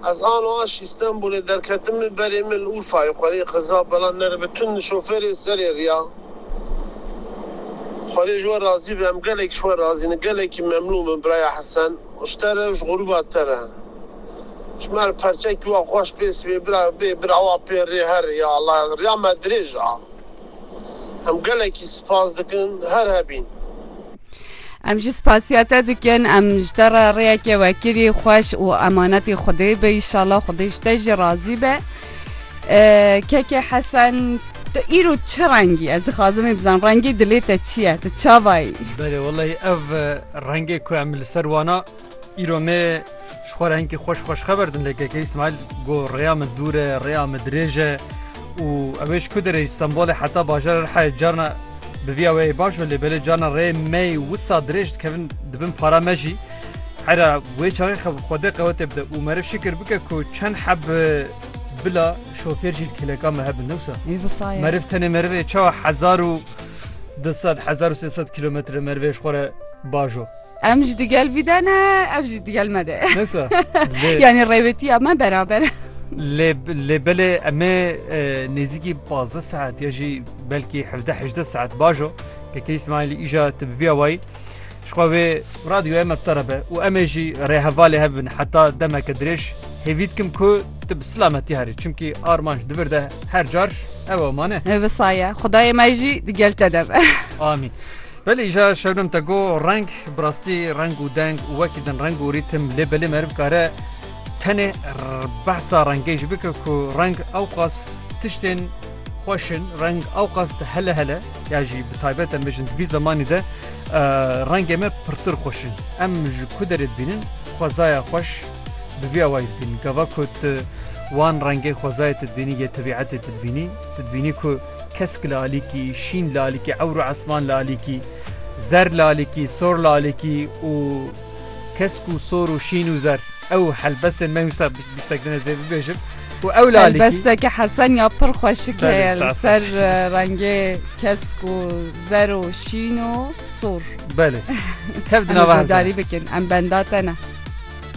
Ez ano aş Îstenbûlê derketime berê min li Urfayê xwedê xiza bela neribe tund şofêrê serê riya. Xwedê ji we razî be em gelekî ji we razî ne gelekî memnûn bin biraya Hesen û ji te re û ji grûba te re. Ji me re perçekî wa xweş pê sibê bira bê bira wa pê rê her ya Allah ya riya me dirêj a. Em gelekî spas dikin her hebîn. Em jî spasiya te dikin em ji te re rêyekê wekirî xweş û emanetî xwedê be îşala xwedê ji te jî razî be kekê hesen Tu îro çi rengî ez dixwazimê bizan rengê dilê te çi ye tu çavayî Belê wellahî ev rengê ku em li ser wana Îro me ji xwe re hinkî xweş xweşxeber din lê KK Îsmaîl got rêya min dûr e, rêya min dirêj e û ew ê ji ku derê ji Stenbolê heta bajara Rihayê carna bi vîya wê yê baş be lê belê carna rê me yê wisa dirêj dikevin di bin para me jî. Hera wê çaxê xwe bi Xwedê qewetê bide û meriv şikir bike ku çend heb bila şofêr jî li kêleka me hebin ne wisa? Ê wisa ye. Meriv tenê meriv ê çawa hezar û du sed hezar û sê sed kîlometre merivê ji xwe re bajo. Em jî digel vî de ne, ev jî digel me de. Neyse. Lê- Yanî rêvetiya me beraber e. Lê lê belê em ê e, nêzîkî 15 saet ya jî belkî 17-18 saet bajo kekê İsmailî îja te bi vîya wayî ji xwe wê radyoya me bi te re be û em ê jî rêhevalê hev bin heta demeke dirêj hêvî dikim ku tu bi silametî herî çimkî armanc di vir de her car ew e mane. Ev saye. Xudayê me jî digel te de be. Amîn. Belê îja Şebnem te got reng bi rastî reng û deng û wekî din reng û rîtim lê belê meriv dikare tenê behsa rengê jî bike ku reng ewqas tiştên xweş in reng ewqas di hele hele ya jî bi taybet em bêjin di vî zemanî de rengê me pirtir xweş in. Em ji ku derê dibînin xwezaya xweş bi vî awayî dibînin. Gava ku tu wan rengê xwezayê te dibînî yê tebîetê te dibînî tu dibînî ku Kesk lalikî, şîn lalikî, ewr û esman lalikî, zer lalikî, sor lalikî û kesk û sor û şîn û zer. Ew helbestên me wisa bîstek din ez ê bibêjim. Û ew lalikî. Helbesteke Hesen ya pir xweşik Belê, heye li sax ser sax. e, rengê kesk û zer û şîn û sor. Belê. Tev di Em nava hev de. guhdarî bikin. Em benda te ne.